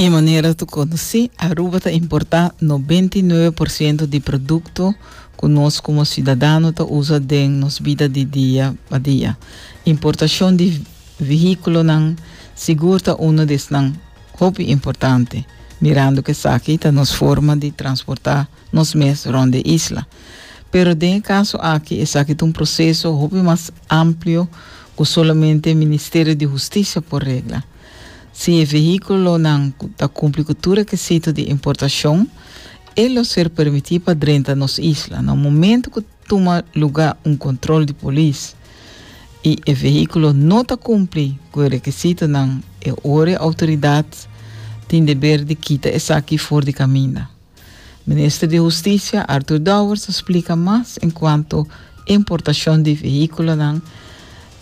E manera tu conoci, Aruba ta importa 99% di producto cu nos como ciudadano ta usa den nos bida di dia pa dia. Importacion di vehiculonan sigur ta uno di esnan hopi importante, mirando cu esaki ta nos forma di transporta nos mes rond e isla. Pero den e caso aki esaki ta un proceso hopi mas amplio cu solamente e Ministerio di Husticia por regla. Si e vehiculonan cu ta cumpli cu tur requisito di importacion e lo ser permiti pa drenta nos isla. Na un momento cu tuma lugar un control di polis y e vehiculo no ta cumpli cu e requisitonan e ora e autoridad tin deber di kita esaki for di caminda. Minister di Husticia, Arthur Dowers a splica mas en cuanto importacion di vehiculonan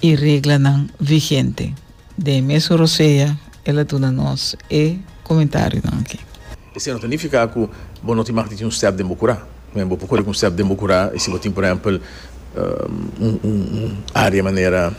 y reglanan vigente. Den e mesun rosea el a duna nos e comentarionan aki. Esei no ta nifica cu bo no tin mag di tin un step den bo cura. Mira, bo por coric un step den bo cura y si bo tin, por ehempel, un area manera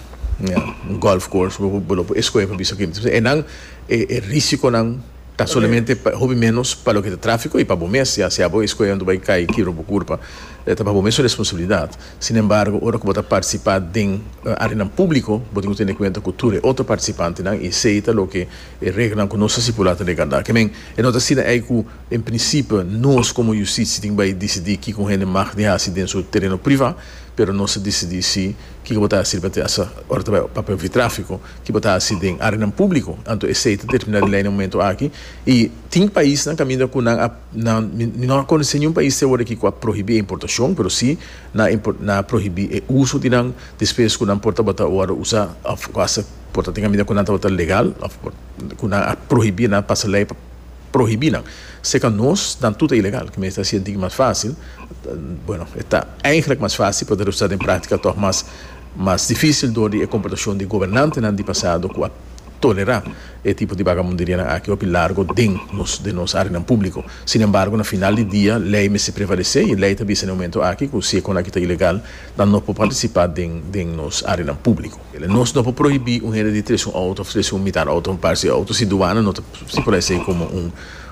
un golf course, bo lo por escoge pa bisa quinta. Ennan e risiconan. Ta solamente pa hopi menos pa loke ta trafiko i pa bo mes, ya sea bo e skoe anto bai kai kibra bo kurpa, ta pa bo mes su responsabilidat. Sinembargo, ora ku bo ta partisipá den áreanan públiko, bo tin ku tene kuenta ku tur e otro partisipantenan, i esei ta loke e reglanan ku nos a stipulá ta regardá. Ke men, e no ta asina ei ku en prinsipio nos komo yustisia tin bai disidí kiko un hende mag di hasi den su tereno privá, pero nos ta disidí si kiko bo ta hasi riba te asa ora ta bai papia ofitráfiko. Ki bo ta hasi den arenan públiko? Anto esei ta terminá di lei na momentu aki i tin paisnan kaminda ku nan a nan mi no a konosé niun pais te awoda aki ku a prohibí e importashon pero si nan a nan a prohibí e uso di nan despues ku nan por tabata wòrdu usá òf ku hasta por ta tin kaminda ku nan tabata legal òf por ku nan a prohibí nan a pasa lei pa prohibí nan sekan nos nan tur ta ilegal ki mester hasi e digi mas fásil bueno e ta eigenlijk mas fásil por ta resultá den práktika tòg mas. mas difísil dor di e komportashon di gobernantenan di pasado ku a tolerá e tipo di bagabunderianan aki hopi largo den nos den nos áreanan públiko. Sinembargo, na final di dia lei mester prevalesé i lei ta bisa na e momentu aki ku si e kon aki ta ilegal nan no por partisipá den den nos áreanan públiko. Nos no por prohibí un hende di trese un outo òf trese un mitar outo òf un pars di outo si duana no ta stipulá esei komo un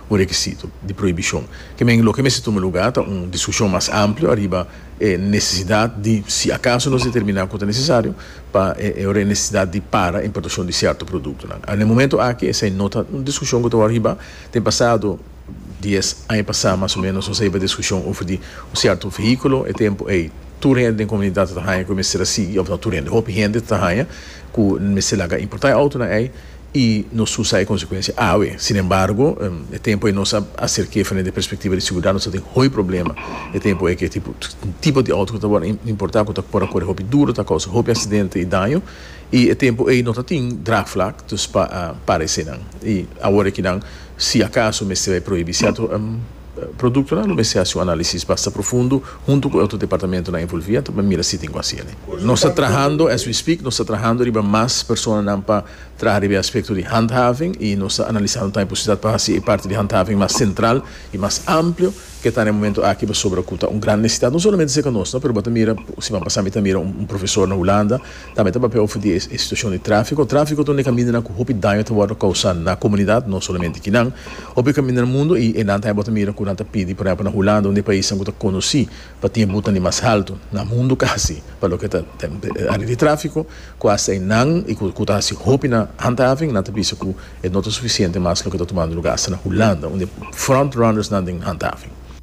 un rekisito di prohibishon. Ke men loke mester tuma lugá ta un diskushion mas amplio ariba. e nesesidat di si akaso nos determiná ku ta nesesario pa e nesesidat di para e importashon di sierto produktonan. Na e momentu aki esei no ta un diskushon ku ta wòrdu hibá. Den pasado dies aña pasá mas o ménos nos a hiba diskushon over di un sierto vehíkulo. E tempu ei tur hende den komunidat tabata haña ku e mester a sigui òf no tur hende, hopi hende tabata haña ku mester laga importá e outonan ei. i nos usa e konsekuensia awe. Sinembargo, e tempu ei nos a aserk'é frente di e perspektiva di seguridat, nos ta tin hopi problema. E tempu ei ku e tipo di outo ku ta wòrdu importá, ku ta por a kore hopi duru, ta kousa hopi aksidente i daño. I e tempu ei no ta tin draagvlak dus pa para esenan. I awor e kinan si akaso mester bai prohibí sierto produktonan lo mester hasi un análisis basta profundo huntu ku e otro departamentunan envolví pa mira si tin ku hasi elei. Nos ta trahando, as we speak, nos ta trahando riba mas personanan pa Traha riba e aspekto di handhaving i nos ta analisá un tambe posibilidat pa hasi e parti di handhaving mas sentral i mas amplio ke ta na e momento aki pasobra ku ta un gran nesesidat no solamente serka nos no pero bo ta mira siman pasa mi ta mira un profesor na Hulanda tambe ta papia over di e situashon di tráfiko tráfiko ta un di e kamindanan ku hopi daño ta wòrdu kousa na komunidat no solamente kinan hopi kaminda na mundu i enan tambe bo ta mira ku nan ta pidi por ehempel na Hulanda un di e paisnan ku ta konosí pa tin e butan di mas haltu na mundu kasi pa loke ta área di tráfiko ku hasta einan i ku ta hasi hopi na handhaving nan ta bisa ku e no ta sufisiente mas loke ta tumando luga hasta na Hulanda unda e front runners nan den handhaving.